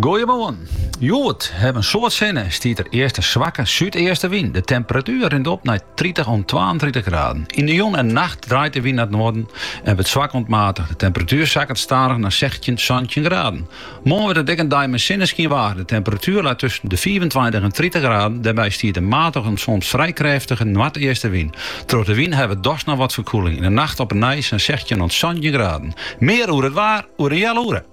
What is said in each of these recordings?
Goeiemoarn! Hjoed hawwe in soad sinne, stiet der earst in swakke súdeastenwyn. De temperatuer rint op nei tritich oant twaentritich graden. Yn de jûn en nacht draait de wyn nei it noarden en wurdt swak oant matich. De temperatuer sakket stadich nei sechstjin, santjin graden. Moarn wurdt it ek in dei mei sinneskyng waar. De temperatuer leit tusken de fiifentweintich en tritich graden. Dêrby stiet in matige en soms frij krêftige noardeastenwyn. Troch de wyn hawwe dochs noch wat ferkuolling. Yn de nacht op 'e nij sa'n sechstjin oant santjin graden. Mear oer it waar oer in healoere.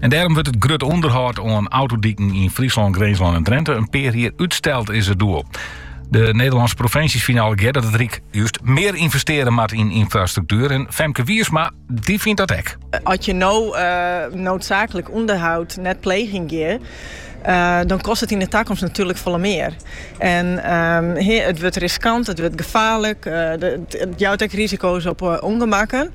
En dêrom wurdt it grut ûnderhâld oan autodiken yn Fryslân, Grinslân en Drinte in pear jier útsteld, is it doel. De Nederlânske provinsjes fine allegear dat it Ryk just mear ynvestearje moat yn ynfrastruktuer en Femke Wiersma dy fynt dat ek. As je no noodzaaklik ûnderhâld net plegen geane, dan kost it yn de takomst natuerlik folle mear. En it wurdt riskant, it wurdt gefaarlik, it jout ek risiko's op ûngemakken.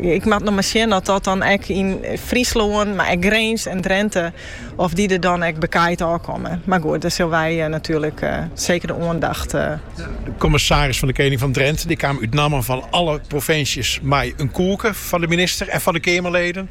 Ik moat noch mar sjen oft dat dan ek, en Fryslân, mar ek Grins en Drinte, oft dy der dan ek bekaaid ôfkomme. Mar goed, dêr sille wy natuerlik seker de oandacht. De kommissaris fan de Kening fan Drinte dy kaam út nammen fan alle provinsjes mei in koeke foar de minister en foar de Keamerleden.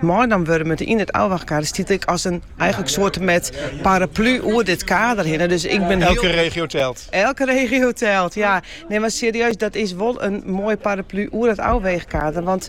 Meinaam wurdt yn it ôfwaachkader stiet ek as in eigenlik soarte mei paraplu oer dit kader hinne. Dus ik bin Elke regio telt. Elke regio telt, ja. Nee, maar serieus, dat is wol in moaie paraplu oer it ôfweegkader. Want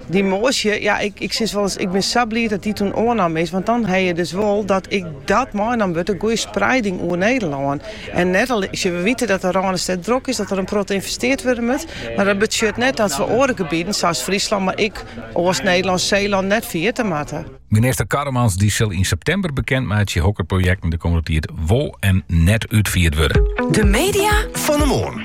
die moasje, ja, ik, ik sis wolris, ik bin sa bliid dat die toen oannam is. Want dan ha je dus wol dat ek dat meinaam wurdt, in goede sprieding oer Nederlân. En net al, ja, we witte dat de Randstad drok is, dat der in protte ynvestearre wurde moat. Mar dat betsjut net dat we oare gebieden, sa as Fryslân, mar ek East-Nederlân, Seelân net ferjitte moatte. Minister Karremans dy sil yn septimber bekend meitsje hokker projekten de kommende tiid wol en net útfierd wurde. De media fan 'e moarn.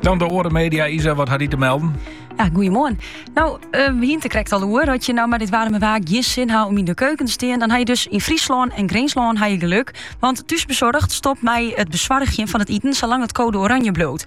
Dan de oare media. Isa, wat hat dy te melden? Ja, goeiemoarn. Nou, uh, eh, hienen it der krekt al oer. As je no mei dit warme waar gjin sin ha om yn de keuken te stean, dan ha je dus yn Fryslân en Grinslân ha je gelok. Want Thuisbezorgd stopt mei it besoargjen fan it iten salang't it koade oranje bliuwt.